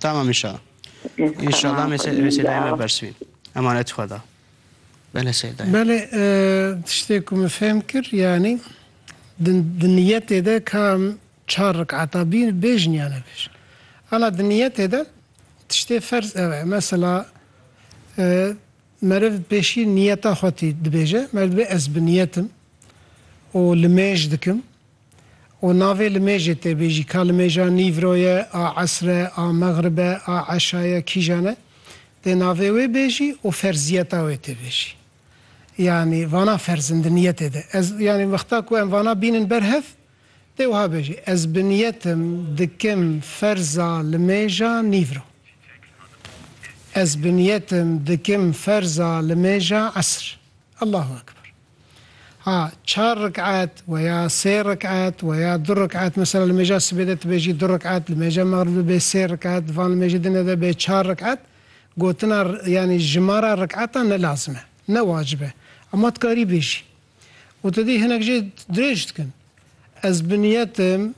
Tamam inşallah. İnşallah meseleye me bersivîn. Emanet xwe da. Bele Seyid dayê. Belê e, tiştê ku min fêm kir yanî di niyetê de ka çar rikata bîn bêjin ya nebêjin. Ala di niyetê de tiştê ferz ev e. Mesela e, meriv pêşî niyeta xwe tî dibêje. Mer dibê ez bi niyetim û li mêj dikim. Û navê li mêjê tê bêjî, ka li mêja nîvro ye, a esr e, a mexrib e, a eşa ye, kîjan e, dê navê wê bêjî û ferziyeta wê tê bêjî. Yanî vana ferz in di niyetê de. Ez yanî wexta ku em vana bînin ber hev, dê wiha bêjî, Ez bi niyet im dikim ferza li mêja nîvro. Ez bi niyet im dikim ferza li mêja esr. Allahu ekber. Ha çar rik'et we ya sê rik'et we ya du rik'et mesela li mêja sibê de tu bêjî du rik'et li mêja mexrib de bê sê rik'et di van li mêjê din de bê çar rik'et gotina yanî jimara rik'etan ne lazim e ne wacib e ema tu karî bêjî û tu dî hinek jê dirêj dikin ez bi niyetim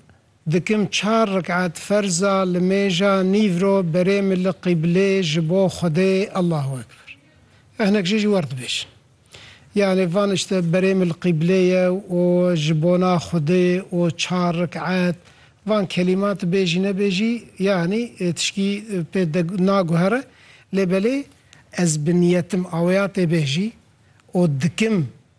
Dikim çar rik'et ferza limêja nîvro berê min li qîblê ji bo Xwedê Allahu Ekber. Ev hinek jî ji wer dibêjin. Yanê van işte berê min li qîblê ye û ji bona Xwedê û çar rik'et van kelîmati bêjî nebêjî yanî tişkî pê naguhere lê belê ez bi niyetim aweya tê bêjî û dikim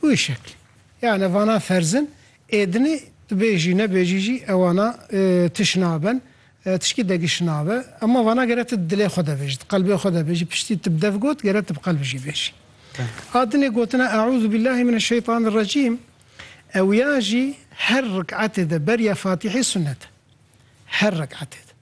Wî şeklî. Yanî vana ferzin êdinî tu bêjî nebêjî jî ewana tu şinaben, tişkî degî şinabe. Ema vana gere tu di dilê xwe de bêjî, di qelbê xwe de bêjî. Piştî tu bi dev got gere tu bi qelb jî bêjî. A dinê gotina Eûzubîllahî mineşşeytanirrecîm ew ya jî her riketê de beriya Fatîhê sunet e. Her riketê de.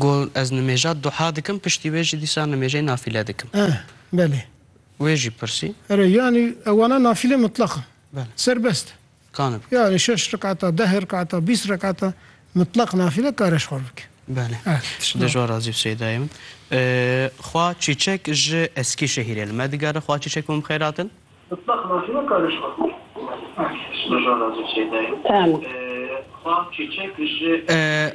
Ku ez nimêja duha dikim piştî wê jî dîsa nimêjeyê nafîle dikim. Eh, belê. Wê jî pirsî. Erê, yanî ew wana nafîlê mitlaq in. Belê. Serbest e. Kane bike. Yanî şeş rekata, deh rekata, bîst rekata mitlaq nafîle kare ji xwe re bike. Belê. Eh, tişt Dê ji wan razî bi Seydayê min. Xwa Çîçek ji Eskîşehîrê li me digere. Xwa Çîçek û min bixêrat in. Mitlaq nafîle kare ji xwe re bike. Eh, tişt Dê ji wan razî bi Seydayê min. Tamam. Xwa Çîçek ji Eskîşehîrê.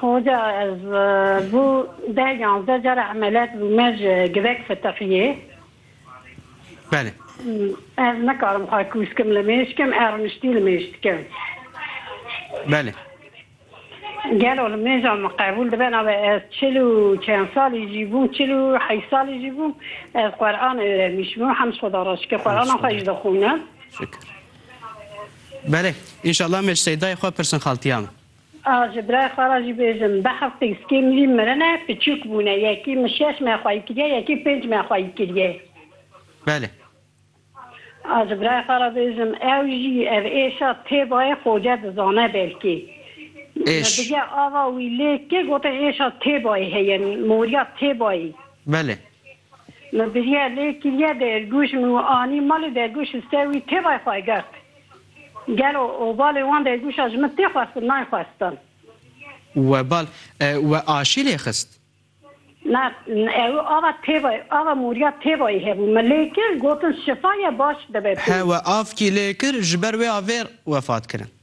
Hoca ez bo deh yanzdeh cara emeliyat bûme ji givek fitiqiyê. Belê. Ez nikarim xwe kûs kim li mêj kim e rûniştî li mêj dikim. Belê. Gelo li mêja min qebûl dibe nabe ez çil û çend salî jî bûm çil û heşt salî jî bûm ez Quran öğrenmişim hemd Xuda re şikir Qurana xwe jî dixwînim. Şikir. Belê. Înşallah mêj seyda yê xwe pirsin xaltiya min. Ez ji birayê xwe re jî bêjim, bi hefteyî sikê min jî mirine, piçûk bûne, yekî min şeş me xwayî kiriye, yekî pênc me xwayî kiriye. Belê. Ez ji birayê xwe re bêjim, ew jî ev êşa tê bayê Xoce dizane belkî. Min bige ava wî lê kê gotin êşa tê bayî heye, morîya tê bayî. Belê. Me biriya lê kiriye dergûj min û anî malê dergûj ji ser wî têvay xwe girt. Gelo obalê wan dergûja ji min tê xwestin nayê xwestin. Webal we aşî lê xist? Na, ew ava têvay, ava moriya têvayî hebû. Min lê kir, gotin şifa ye baş dibe pê. He we avkî lê kir, ji ber wê avêr wefat kirin.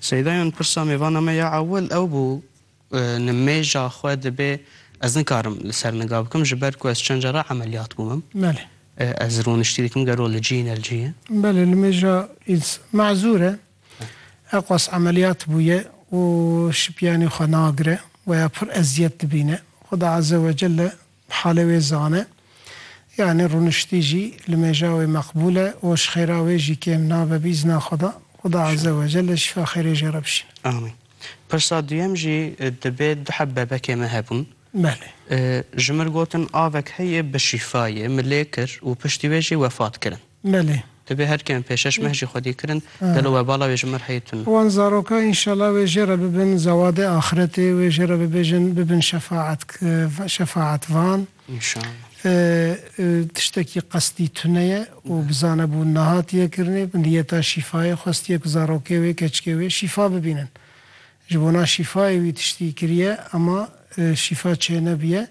Seydayan pirsa me vana me ya ewil ew bû nimêja xwe dibê ez nikarim li ser niga bikim ji ber ku ez çend cara emeliyat bûmim. Belê. Ez rûniştî dikim gero li cî ne li cî ye. Belê nimêja îns mezûr e. Eqwas emeliyat bûye û şipiyanî xwe nagire. Weya pir eziyet dibîne. Xuda Azze wecelle Halê wê zane. Yanî rûniştî jî li mêja wê meqbûl e û ji xêra wê jî kêm nabe bi îzna Xweda. Xweda Eze Wecel e şîfa xêrê jê re bişîne. Amîn. Pirsa duyem jî dibê du heb bebekê me hebûn. Belê. Ji mir gotin avek heye bi şîfayê me lê kir û piştî wê jî wefat kirin. Belê. Divê her kêm pêşeş meh jî xwedî kirin, gelo we bala wê ji mir heyî tun. Wan zaroka înşela wê jê re bibin zewadê axiretê, wê jê re bibêjin bibin şefaet şefaetvan. Înşela. Tiştekî qesdî tune ye û bizane bûn nehatiye kirinê, bi niyeta şîfayê xwestiye ku zarokê wê, keçikê wê şîfa bibînin. Ji bona şîfayê wî tiştî kiriye ema şîfa çênebiye.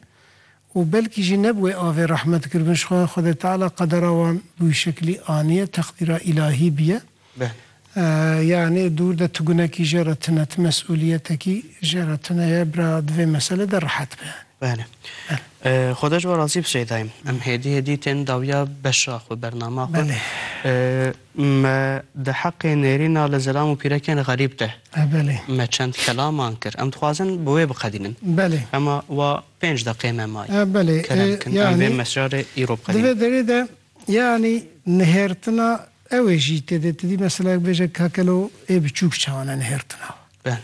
û belkî jî ne bi wê avê rehme dikir bin ji xwe, Xwedê Teala qedera wan bi wî şeklî aniye, teqdîra îlahî bûye. Belê. Yanî dûr de tu gunekî jê re tune, tu mesûliyetekî jê re tune ye, bira di vê mesele de rehet be yanî. Belê. Belê. Xweda ji we razî bi Şeydayê. Em hêdî hêdî tên dawiya beşa xwe, bernama xwe. Belê. Me di heqê nêrîna li zilam û pîrekên xerîb de. Belê. Me çend kelaman kir. Em dixwazin bi wê biqedînin. Belê. Hema wa Pênc deqê me may. A belê e Kerem kin em vê yanî mesjarê îro bi di qedîm. vê derê de yanî nihêrtina ew ê jî têdê tidî mesela bêje ka kelo ê biçûk çawa ne nihêrtina we. Belê.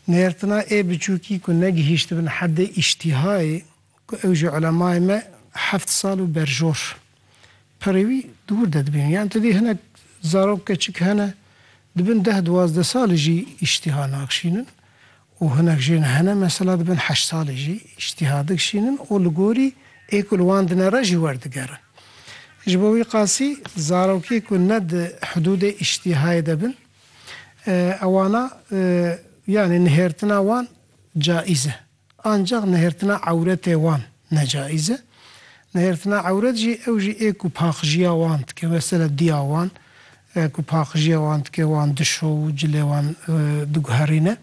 Nihêrtina ê biçûkî ku negihîştibin heddê îştîhayê ku ew jî ulemayê me heft sal û berjor perê wî dûr de dibînin. Yan tidî hinek zarok keçik hene dibin deh duwazdeh sal jî îştîha naxşînin û hinek jin hene mesela dibin heşt salî jî îştîha dikişînin û li gorî ê ku li wan dine re jî werdigerin. Ji bo wî qasî zarokê ku ne di hidûdê îştîhayê de bin ewana yanî nihêrtina wan caîz e. Ancax nihêrtina ewretê wan ne caîz e. Nihêrtina ewret jî ew jî ê ku paqijîya wan dike mesela dîya wan ku paqijîya wan dike wan dişo û cilê wan diguherîne.